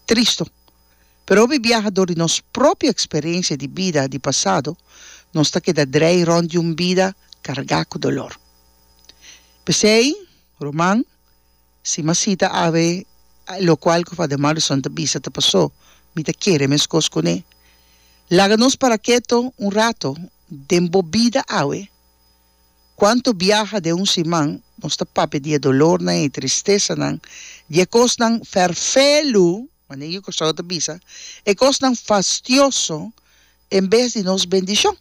Tristu. Pero hopi biaha dor di nos propio eksperensia di bida di pasado, nos ta keda drei rònt di un bida kargá ku dolor. P'esei, ruman, si Masita awe lokual ku Father Morrison ta bisa ta pasó, mi ta kere meskos kuné. Laga nos para keto un rato den bo bida awe. Cuanto biaha den un siman, nos ta papia di e dolornan, e tristesanan, di e cosnan ferfelu, manera Yuko Stroud ta bisa, e cosnan fastioso, en bes di nos bendicion.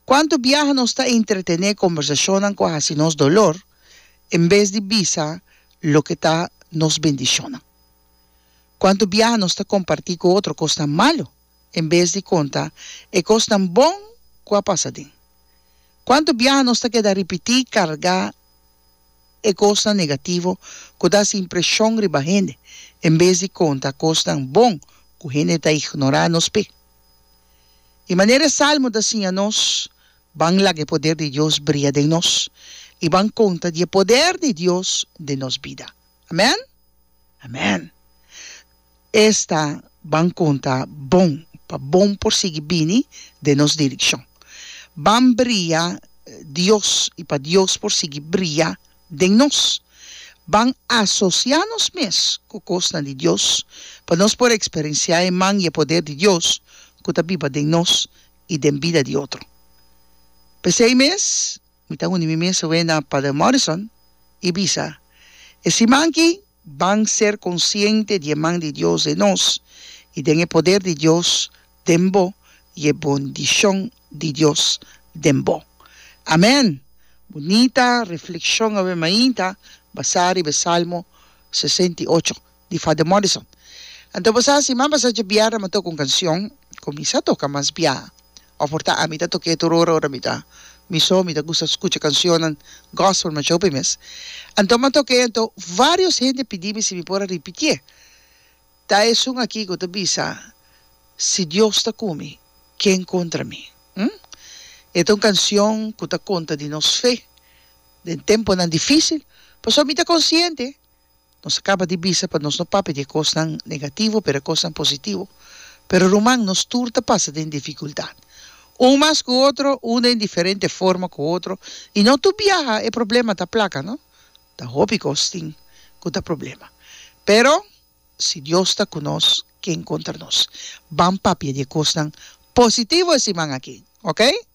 Cuanto biaha nos ta entretene e conversacionnan cu a haci nos dolor, en bes di bisa loke ta nos bendicionnan. Cuanto biaha nos ta comparti cu otro cosnan malu. en bes di konta e kosnan bon ku a pasa den. Kuantu biaha nos ta keda ripití i kargá e kosnan negativo ku ta hasi impreshon riba hende, en bes di konta kosnan bon ku hende ta ignorá nos p'e? Di manera e Salmo ta siña nos, ban laga e poder di Dios bria den nos i ban konta di e poder di Dios den nos bida. Amèn! Amèn! Esta ban con ta bon pa bon por sigui bini den nos direccion. Ban bria Dios y pa Dios por sigui bria den nos. Ban asocia nos mes cu cosnan di Dios pa nos por experencia e man y e poder di Dios cu ta biba den nos y den bida di otro. P'esey mes. Mi ta uni mi mes awé na Pader Morrison i bisa, E siman aki ban ser konsiente di e man di Dios den nos i den e poder di Dios den bo i e bondishon di Dios den bo. Amèn! Bunita reflekshon awé mainta basá riba e Salmo sesenta i ocho. di Father Morrison. Anto bo sa si m'a basa dje bièrnè m'a toka un kansion ku mi sa toka mas biaha òf por ta ami ta toka e tur ora ora mi ta mi so, mi ta gusta skucha kansionnan gòspel mashó pi mes. Anto m'a toka ei anto vários hende pidi mi si mi por a ripitié. Ta esun aki ku ta bisa, Si Dios ta ku mi, ken kontra mi? Hm? E ta un kansion ku ta konta di nos fe den tempunan difísil, pasobra mi ta konsiente, Nos a kaba di bisa pa nos no papia di e kosnan negativo pero e kosnan positivo. Pero ruman, nos tur ta pasa den difikultat. Un mas ku otro, un den diferente forma ku otro, i no tur biaha e problema ta plaka, no. Ta hopi kos tin ku ta problema. Pero, si Dios ta ku nos, ken kontra nos? Ban papia di e kosnan positivo e siman aki, oke?